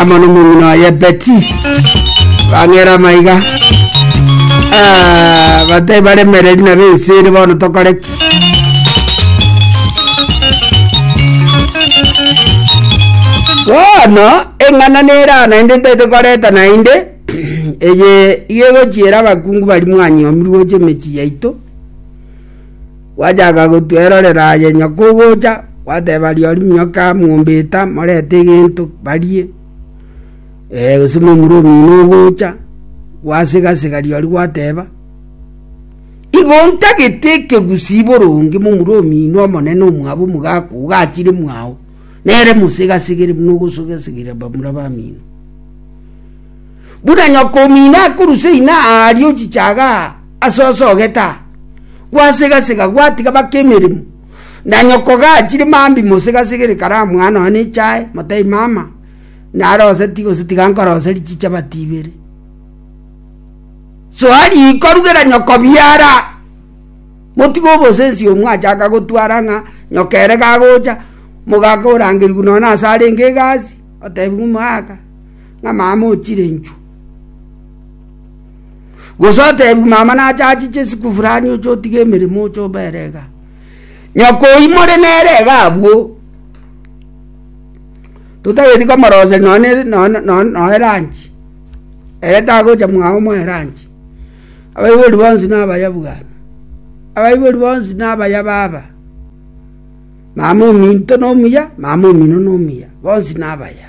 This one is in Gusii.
amo nomong'ina oye beti bang'era amaiga Ah, batari baremereri na benseri bono tokore ki bono eng'ana nera naende ntaete koreta naende eye iga egochiera abakungu bari mwanyomirwe gocha emechie yaito Gwachaka gotwerorera aye nyoko ogocha, gwateba Rimio ka mombeta morete egento barie, gose momura omino ogocha, gwasigasega riori gwateba, Igo ntagete ekegusii boronge momura omino omonene omwabo omogaka ogachire mwao, nere mosigasigere buna ogosogasigera bamura bamino. Buna nyokomino akorusa ina aaria ochichaga ase osogeta, gwasegasega gwatiga baka emeremo, na nyoko gachire mambi mosegasegere kare amwana one echae, motebi mama, narose ti gose tiga nkorose richichapati ibere. Soa riko rugera nyoko biara, motiga obosensi oyo mwachaka gotwara ng'a nyoko ere gagocha, mogaka orangerigwe nonye ase arenge egasi, otebi ng'a omogaka. ng'amama o chirenchu. Gose otebiwe mama nache achiche isiko fulani oche otige emeremo oche obere iga. Nyoko oyio more nere iga abwo, totageti komoroseria nonya ne- nonya nonya nonya eranchi, ere tagocha mwago moe eranchi. Abaibori bonsi na abaya bwane, abaibori bonsi na abaya baba, mama ominto na omuya, mama omino na omuya, bonsi na abaya.